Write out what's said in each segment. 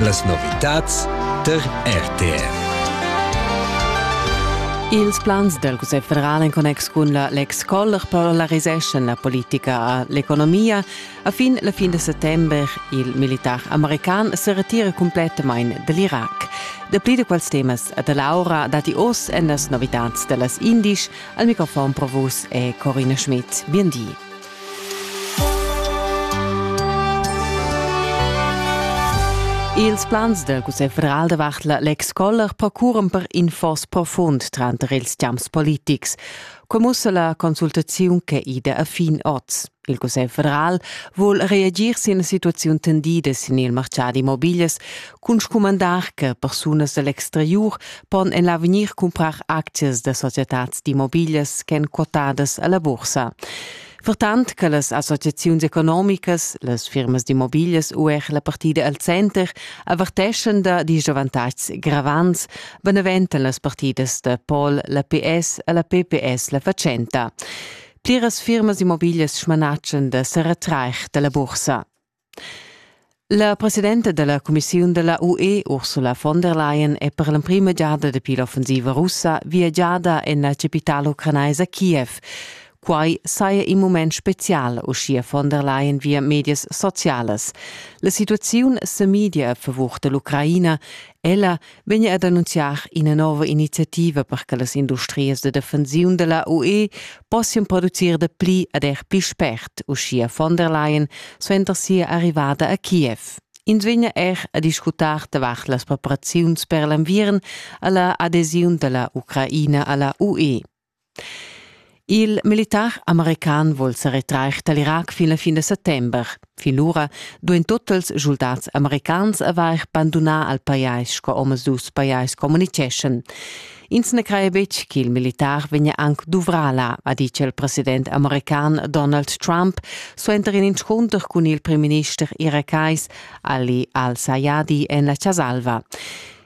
Las novitads tar RTR. Ils plans del Cussegl federal en connex cun la Lex Koller polariseschan la politica a l'economia. A fin la fin de settembre, il militar american se retira completament dell'Iraq. Dapli de quels temas de Laura dati oss en las novitats de las Indisch. Al microfon provus è Corina Schmidt. Bien di. Ils plans del Cussegl federal davart la Lex Koller procuran per in foss profund tranter ils champs politics. Commussa la consultaziun che ida a fin oz. Il Cussegl federal vuol reagir sin la situaziun tendida sin il marciad immobilias, cun scumandar che persunas da l'exteriur pon en l'avegnir cumprar aczias da societads d'immobiglias ch'èn quotadas a la bursa. Vertant che las associaziuns economicas, las firmas d'immobiglias u er la partida al center averteschan da disavantatgs gravants, beneventan las partidas da Pol la PS e la PPS la fatschenta. Pliras firmas d'immobiglias smanatschan da seretrair da la bursa. La presidenta dalla cumissiun dalla UE Ursula von der Leyen è per l'emprima giada dapi l'offensiva russa viagiada en la capitala ucranaisa Kiev. Quai saja in mument spezial, uschia von der Leyen via medias socialas. La situaziun sa midia a favur dall'Ucraina. Ella vegna ad annunziar ina nova iniziativa per che las industrias de defensiun della UE possian producir de pli ad er pli spert, uschia von der Leyen suenter sia arrivada a Kiev. Ins vegna er a discutar davart las preparaziuns per l'enviern alla adesiun della Ucraina alla UE. Il militar american vol sa retrair dal Irac fin la fin da settember. Fin lura duain totals schuldats americans avair bandunà al pajais sco omadus pajais communiceschan. Ins na craja betg ch'il militar vegnia anc duvrà là, ha ditg il president american Donald Trump suenter in inscunter cun il primminister irakais Ali al-Sayadi en la Chas Alva.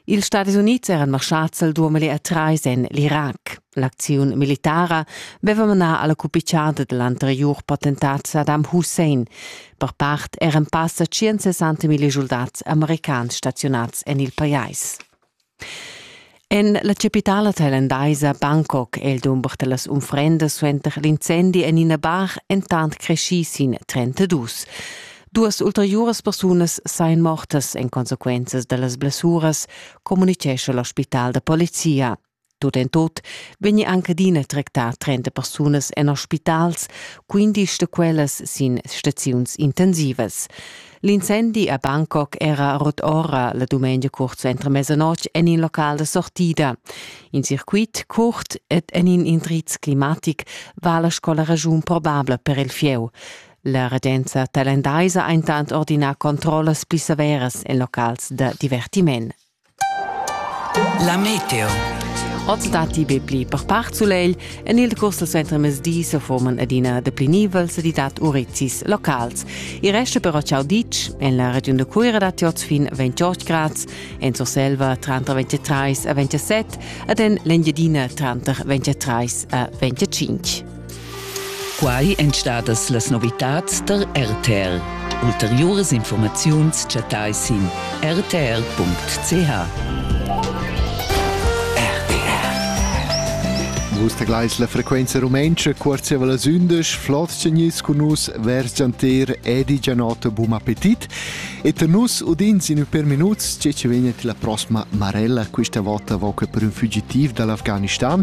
Ils Stadis Unids eran marschads al duamilé a trais en l'Irac. L'acziun militara veva manà alla cupicciada dell'anteriur potentat Saddam Hussein. Per part eran passa 160 mila soldats americans stazionats en il pajais. En la capitala thailandaisa Bangkok è il dumber dellas unfrendas suenter l'incendi en ina bar entant creschì sin 32. Duas ulteriuras persunas sain mortas en consequenzas da las blessuras, communitgescha l'ospital da polizia. Tut en tot vegni anche adina tractà 30 persunas en ospitals, 15 da quellas sin staziuns intensivas. L'incendi a Bangkok era rot ora la dumengia curt suenter mezzanoc en in local da sortida. In circuit curt ed en in indriz climatic va la scola ragiun probabla per il fieu. La regenza talendaisa ha intant ordinà controllas pli severas en locals da divertiment. La meteo. Oz datti be pli per part sulegl. En il decurs dal suentermezdi se forman adina dapli nivels e dat urizis locals. Il resto però ciao ditg. En la regiun da Cuira datti oz fin 28 grad, en Surselva tranter 23 e 27 ed en l'Engiadina tranter 23 e 25. Quai èn stadas las novitads tar RTR. Ulteriuras informaziuns chattai sin rtr.ch. Vus tegleis la frequenza rumentscha cuorziava las undisch flot segnis cun nus vers gianter Edi Gianotto Bum appetit e te nus udins in per minuts che ci vegnet la prossima marella questa volta voca per un fugitiv dall'Afghanistan